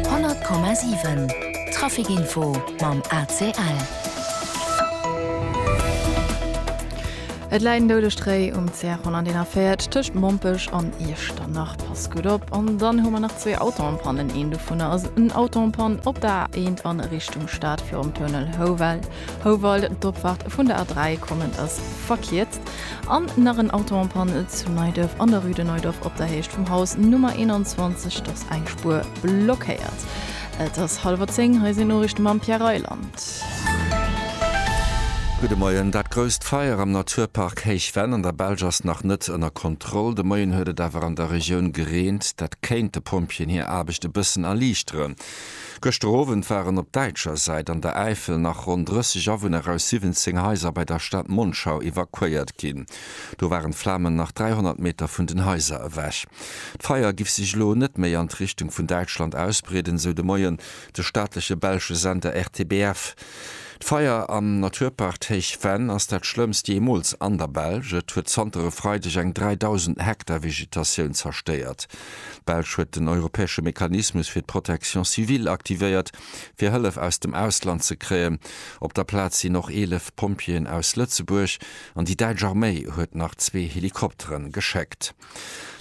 100,7 Trafic Info mam ACL. Et läit en doude Stréi um CR141 tëscht Mompech an Iechternach. Pass gutt op. An dann hu mer nach zwee Autoen en panne. Een dovunner ass en Auto en panne op der A1 a Richtung Stad virum Tunnel Houwald. Houwald, d'Opfahrt vun der A3 kommen ass verkierzt an nach en Auto en panne zu Neiduerf an der rue de Neudorf op der Héicht vum Haus Nummer 21, et ass eng Spuer blockéiert. Et ass hallwer 10, hei sinn Noriichte mam Pierre Reyland. Gudde Moien, Dat grousst Feier am Naturpark Héichvenn an der Belsch ass nach net ënner Kontroll. De Moien huet et awer an der Regioun gereent, dat kéint de Pompjeeën hir Aarbecht e bëssen erliichteren. Gëschter Owend waren op däitscher Säit an der Äifel nach ronn 30 Awunner aus 17 Haiser bei der Stad Monschau evakuéiert ginn. Do waren d'Flamen nach 300 Meter vun den Haiser ewech. D'Feier giff sech elo net méi an d'Richtung vun Däitschland ausbreeden, esou de Moien de staatleche belsche Sender RTBF. D'Feier am Naturpark Héich Venn ass dat schlëmmst jeemools an der Belsch. Et huet zanter e Freideg eng 3.000 Hektar Vegetatioun zerstéiert. D'Belsch huet den europäesche Mechanismus fir d'Protection civile aktivéiert, fir Hëllef aus dem Ausland ze kréien. Op der Plaz sinn och 11 Pompjeeën aus Lëtzebuerg an déi däitsch Arméi huet nach zwee Helikoptere geschéckt.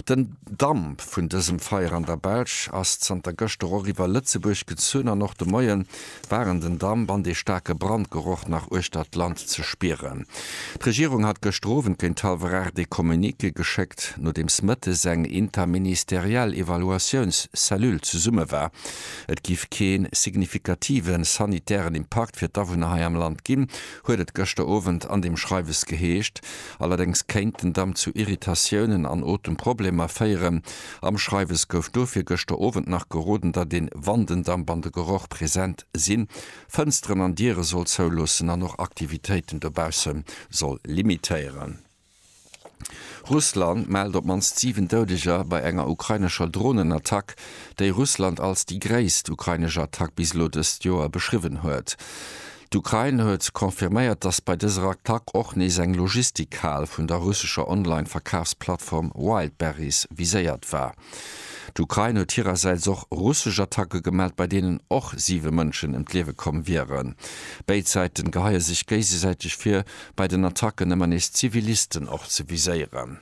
Den Damp vun dësem Feier an der Belsch ass zanter gëschter och iwwer Lëtzebuerg gezunn an och de Moien waren den Damp an dee staarke Brandgeroch nach uechter d'Land ze spieren. D'Regierung hat gëschter Owend géint hallwer 8 ee Communiqué geschéckt, nodeems mëttes eng interministeriell Evaluatiouns-Cellule zesumme war. Et géif kee signifikative sanitären Impakt fir d'Awunner hei am Land ginn, huet et gëschter Owend an deem Schreiwes geheescht. Allerdéngs kéint den Damp zu Irritatiounen an Otemproblemer féieren. Am Schreiwes gouf dofir gëschter Owend nach geroden, datt een, wann den Damp an de Geroch present sinn, Fënsteren an Diere soll zouloossen an och Aktivitéiten dobausse soll limitéieren. Russland mellt op d'mannst 7 Doudeger bei enger ukrainescher Dronenattack, déi Russland als déi gréisst ukrainesch Attack bis elo dëst Joer beschriwwen huet. D'Ukrain huet confirméiert, dass bei dëser Attack och nees eng Logistikhal vun der russescher Online-Verkafsplattform Wildberries viséiert war. D'Ukrain huet hirersäits och russesch Attacke gemellt, bei deenen och siwe Mënschen ëm d'Liewe komm wieren. Béid Säite geheie sech géigesäiteg vir, bei den Attacken ëmmer nees Zivilisten och ze viséieren.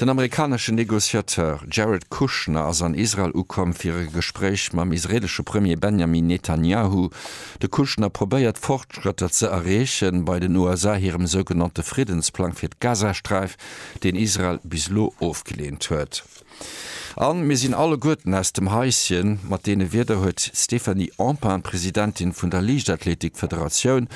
Den amerikanesche Negociateur Jared Kushner ass an Israel ukomm fir e Gespréich mam israeelesche Premier Benjamin Netanjahu. De Kushner probéiert Fortschrëtter ze erreechen bei den USA hirem sougenannte Friddensplang fir d'Gazasträif, deen Israel bis elo ofgeleent huet. A mir sinn alleguerten aus dem Haischen. Mat deene Wierder huet d'Stéphanie Empain, Presidentin vun der Liichtathletik-Federatioun,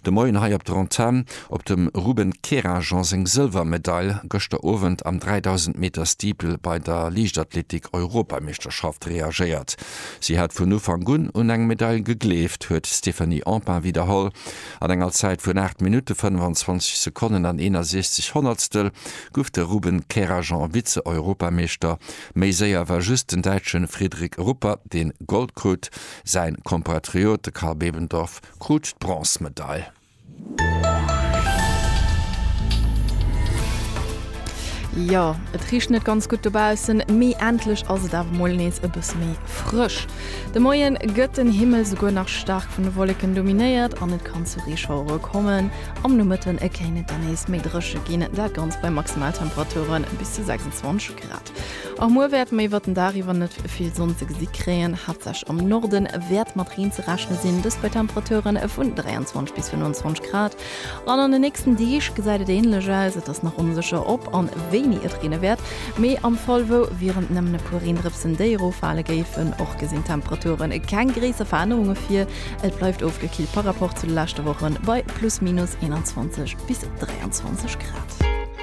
de Moien hei op der Antenn op dem Ruben Kerajan seng Sëlwermedail gëschter Owend am 3.000 Meter Steeple bei der Liichtathletik-Europameeschterschaft reagéiert. Si hat vun Ufank un un eng Medail gegleeft, huet d'Stéphanie Empain widderholl. An enger Zäit vun 8 Minutte 25 Sekonnen an 61 Honnertstel guff de Ruben Kerajan Vize-Europameeschter. Méi séier war just den Däitschen Fridrik Ruppa deen Gold krut. Säin Kompatriot, de Karl Bebendorf krut d'Bronzmedail. Jo, et richt net ganz gutt dobaussen, mee endlech ass et awer mol nees e bësse méi frësch. De Moien gëtt den Himmel souguer nach staark vun de Wolleken dominéiert an et kann zu Reeschauere kommen. Am Nomëtten kéint et dann nees méi dréche ginn, dat Ganzt bei Maximaltemperature bis zu 26 Grad. Och muer wäerte mir iwwert den Dag iwwer net vill Sonn ze gesi kréien, haaptsächlech am Norde wäert mat Reen ze rechne sinn, dëst bei Temperature vun 23 bis 25 Grad. An an den nächsten Deeg gesäit et änlech aus. Et ass nach onsécher, ob an wéini et reene wäert, mee am Fall wou wieren et nëmmen e puer Reendrëpsen, déi eroffale géifen. Och gesinn d'Temperature keng gréisser Verännerunge vir, et bleift ofgekillt par Rapport zu de leschte Wochen bei plus minus 21 bis 23 Grad.